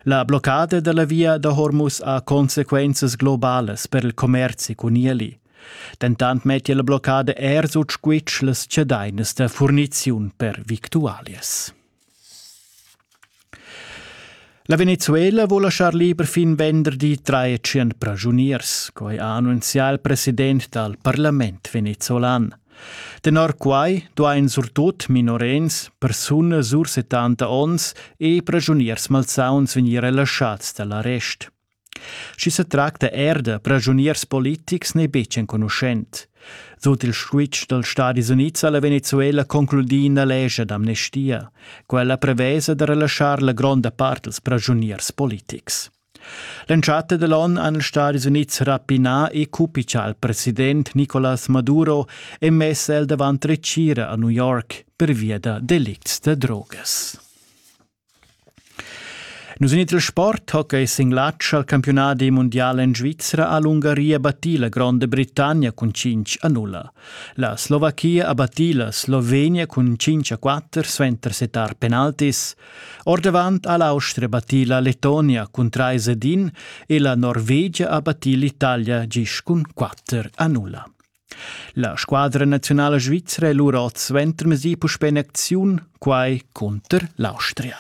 La bloccada dalla via da Hormus ha consequenzas globalas per il commerzi cun ieli. Dentant metti la bloccada er sut squitsch las cedainas da furniziun per victualias. La Venezuela vuol lasciar liber fin venderdi 300 pragioniers, quai ha annunzià il president dal parlament venezolan. Tenor quai duain surtut minorenns, persunas sur 70 onns e praschuniers malsauns vegnir relaschads da l'arrest. Sch'i sa tracta er da praschuniers politics n'è betg enconuschent. Sut il switch dals Stadis Unids ha la Venezuela concludì ina lescha d'amnestia. Quella prevesa da relaschar la gronda part dals praschuniers politics. L'entschatta dell'on han ils Stadis Unids rapinà e cupichà al president Nicolas Maduro e mess el davant retgira a New York pervia da delicts da drogas. Nus in il sport hockey singlatsch al campionat mondial en Svizzera ha l'Ungaria battì la Gronda Britannia cun 5 a 0. La Slovachia ha battì la Slovenia cun 5 a 4 suenter setar penaltis. Ordavant ha l'Austria battì la Letonia cun trais ed in e la Norvegia ha battì l'Italia gist cun quatter a nulla. La squadra nazionala svizra è lura oz suentermesì puspè in acziun, quai cunter l'Austria.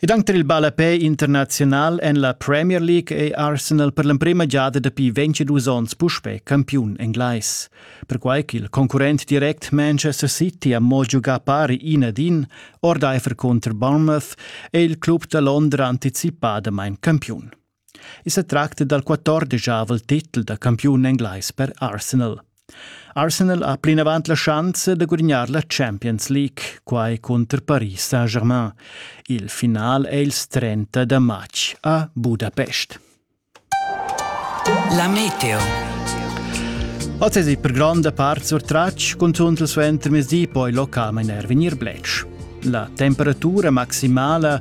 Ed anc tar il ballapè internaziunal en la Premier League è Arsenal per l'emprima giada dapi 22 onns puspè campiun englais. Perquai ch'il concurrent direct Manchester City ha mo giugà pari ina din, ordaifer cunter Bournemouth, è il club da Londra anticipadamain campiun. I sa tracta dal quattordegiavel titel da campiun englais per Arsenal. Arsenal ha plinavant la schanza da gudignar la Champions League, quai cunter Paris Saint-Germain. Il final è il 30 da matg a Budapest. La meteo. Oz è per gronda part surtratg, cunzunt il suentermezdi poi localmain er vegnir bletsch. La temperatura maximala